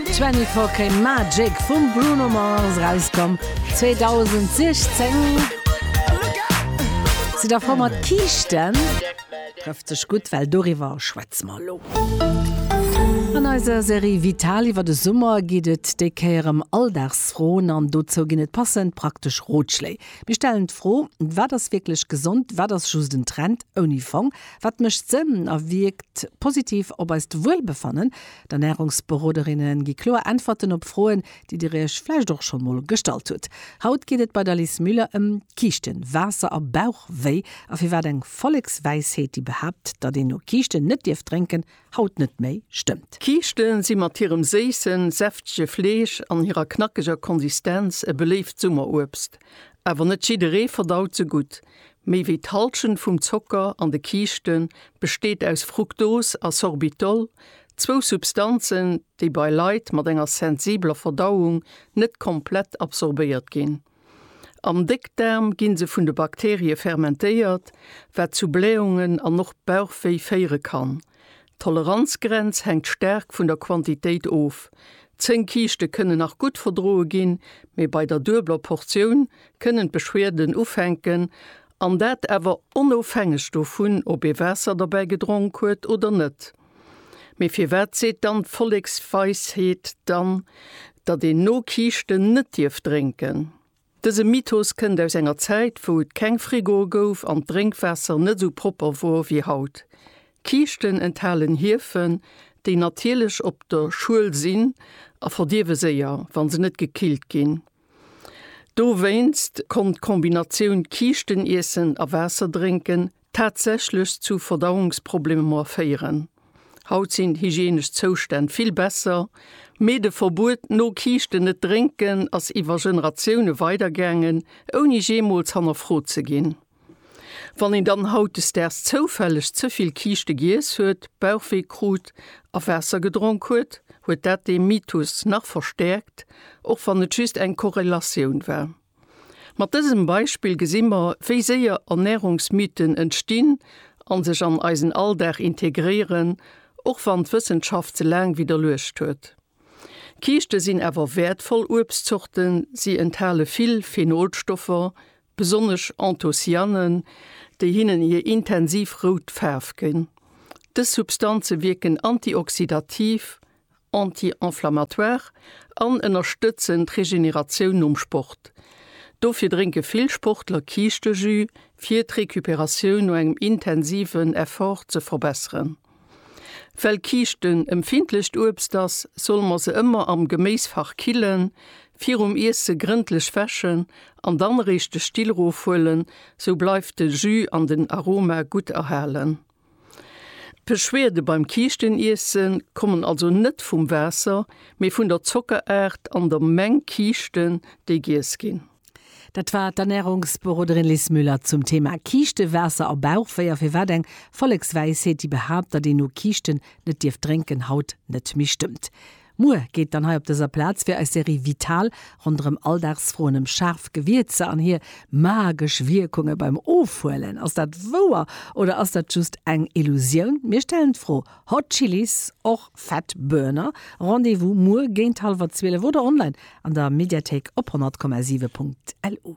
24K Magic vum Bruno Mars rauskomm 2016. Sidd der for mat Kiischten? Trëfft sech gutt, well doriwwer schwätze mer elo. An eiser Serie Vital iwwer de Summer geet et déi Kéier ëm Alldagsfroen an dozou ginn et passend praktesch Rotschléi. Mir stellen d'Fro, Wat ass wierklech gesond? Wat ass just en Trend ouni Fong? Wat mécht Sënn a wierkt positiv op eist Wuelbefannen? D'Ernärungsberoderinne gi kloer Äntwerten op Froen, déi Dir Iech vläicht och scho mol gestallt hutt. Haut geet et bei der Liz Müller ëm Kiischten, Waasser a Bauchwéi a firwat eng Vollekswäisheet, déi behaapt, datt een no Kiischten net dierf drénken, haut net méi stëmmt. Kiischte si mat hirem séissen, säftege Fleesch an hirer knackeger Konsistenz e beléift Summeruebst. Awer net jidderee verdaut se gutt. Méi wéi d'Hallschent vum Zocker an de Kiischte besteet aus Fruktos a Sorbitol, zwou Substanzen, déi bei Leit mat enger sensibeler Verdauung net komplett absorbéiert ginn. Am Déckdaarm gi se vun de Bakterie fermentéiert, wat zu Blähungen an och Bauchwéi féiere kann. D'Toleranzgrenz hänkt staark vun der Quantitéit of, 10 Kiischte kënnen nach gutt verdroe ginn, mee bei der duebeler Portioun kënnen d'Beschwerden ufänken, an dat awer onofhängeg dovun, ob ee Waasser derbäi gedronk huet oder net. Mee firwat seet dann d'Volleksweisheet dann, datt een no Kiischten net dierf drénken? Dëse Mythos kënnt aus enger Zäit, wou et keng Frigoe gouf an d'Drénkwaasser net esou propper wor wéi haut. Kiischten enthalen Hiefen, déi natierlech op der Schuel sinn a verdierwe séier, wa se net gekillt ginn. Dowéinst konnt d'Kombinatioun Kiischteniessen a Waasser drénken tatsächlech zu Verdauungsproblemer féieren. Haut sinn d'hygienesch Zoustänn vill besser, mee de Verbuet, no Kiischten net drénken, ass iwwer Generatioune weidergaangen, ouni jeemools hannerfrot ze ginn. Wann een dann hautdesdaags zoufälleg ze vill Kiischte giess huet, Bauchwee krut a Waasser gedronk huet, huet dat dee Mythos nach verstäerkt, och wann et just eng Korrelatioun war. Mat dësem Beispill gesi mer, wéi séier Ernärungsmythen entstinn a sech an eisen Alldag integréieren, och wann d'Wëssenschaft se laang widderluecht huet. Kiischte sinn awer wäertvoll Uebstzorten, si enthale vill Phenolstoffer, besonnesch Anthocyanen, déi hinnen hir intensiv rout Faarf ginn. Dës Substanze wierken antioxidativ anti-inflammatoire an ënnerstëtzen d'Regeneratioun nom Sport. Dofir drénke vill Sportler Kiischtejus, fir d'Recuperatioun no engem intensiven Effort ze verbesseren. Well Kiischten empfindlecht Uebst ass, solle mer se ëmmer am Geméisfach killen, virum Iesse grëndlech wäschen an dann eréischt de Still rofhuelen, sou bleift de Jus an den Aroma gutt erhalen. D'Beschwerde beim Kiischteniissen kommen also net vum Waasser, mee vun der Zockeraart an der Meng Kiischten, déi giess ginn. Dat war d'Ernärungsberoderin Lis Müller zum Thema Kiischte, Waasser a Bauchwéi a firwat eng Vollekswäisheet, déi behaapt, datt een no Kiischten net dierf drénken, haut net méi stëmmt. Muer geet dann hei op dëser Plaz fir eis Serie Vital ronderëm Alldagsfroen ëm schaarf Gewierzer an hir magesch Wierkunge beim Ofhuelen. Ass dat wouer oder ass dat just eng Illusioun? Mir stellen d'Fro. Hot Chilis, och Fat Burner. Rendez-vous muer géint hallwer 12 oder online an der Mediathéik op 100,7.lu.